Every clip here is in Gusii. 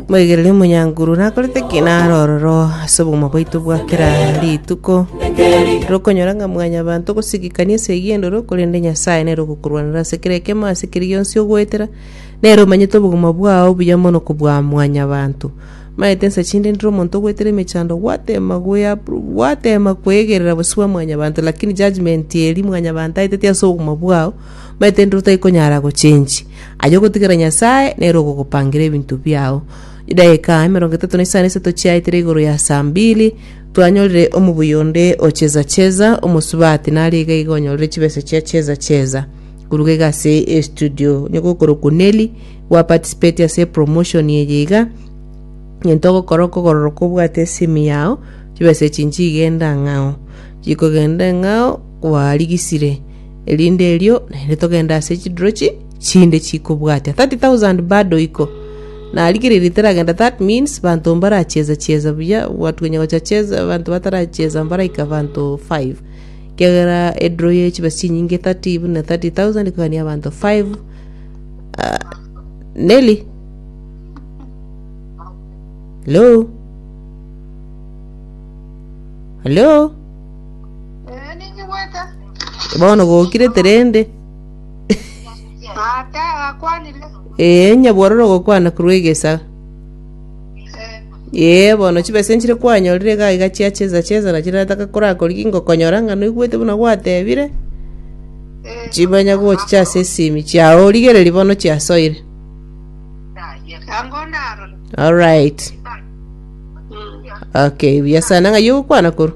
moigereria omonyankuru nakorete ki naro ororo ase obogima bwaito bwa kera rituko rokonyora ng'a mwanyabanto ogosigikania ase eyio endoro korende nyasae nere ogokorwanera ase kera ekemo ase keri gionsi ogoetera nere omanyete obogima bwao buya mono kobua mwanyabanto maete nsa chinde ndire omonto ogoetera emechando gwatema goya gwatema koegerera bosio bwa mwanyabanto lakini judgement eri mwanyabanto aeteti ase obogima bwao maete ndire otakonyara gochenchi. Aye ogotigera Nyasae nere ogogopangira ebinto biao. Chidaeka emerongo etato na isano esato chiaetire igoro ya saa mbili, twanyorire omobuya onde o Cheza Cheza, omosubati, nare iga iga onyorire chibesa chia Cheza Cheza. Koruga iga ase estudio, onye gokorokwa Nelly, gwaparticipeti ase epromotion eye iga, egento ogokora okogororoka obwate esimi yao, chibesa echi nchigenda ng'ao. Chikogenda ng'ao, kwarigisire. erinde erio naende togende ase chidrochi chinde chikobwatia 30000 bado iko narigereria teragenda that means banto mbaracheza cheza buya watu wenye gocha cheza banto bataracheza mbaraika banto 5 kiagera edro ye chibesa chinyinge 30 buna 30000 kogania abanto 5 Ah, Nelly hello hello Bono gokirete rende. Ate agakwanire. Ee, onye bwororo gokwana korwa egesa. Ee, bono chibesa nchire kwanyorire iga iga chia chesa chesa na chirata kakorakorigia ngokonyora ng'a noigwete buna gwatebire. Chimanya gochicha ase esimi chiao origereri bono chiasoire. Ango narore. All right. Okay, buya sana ng'ai ogokwana korwa.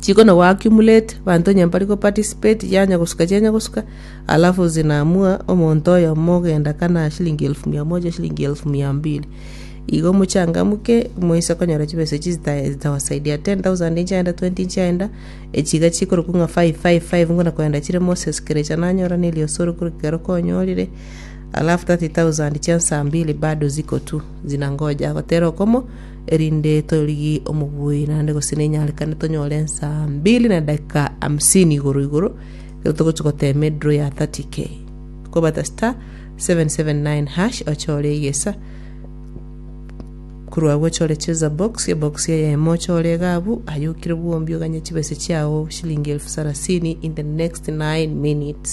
Chiko na go accumulate banto onye mbari go participate chianya gosuka chianya gosuka alafu zinaamua omonto oyomo ogenda kana shilingi elfu mia moja shilingi elfu mia mbili igo mochangamke moise konyora chibesa echi zita- zitawasaidia 10000 nchiaenda 20 nchiaenda echi iga chikorokwa ng'a five five five ngona koenda chire Moses kerecha nanyora na erioso ore korwa ekero konyorire alafu 30000 chia nsa mbili bado ziko tu zinangoja gotera okomo. erinde torigie omobui naende gose nenyarekane tonyore ensaa mbili na dakika hamsini igoro igoro ekero togochi gotema edro ya 30k kobata star 779 hash ochore egesa korwa agwo ochore cheza box ebox eye emo ochore egabu ayokire bwombi oganye chibese chiao shilingi elfu sarasini in the next 9 minutes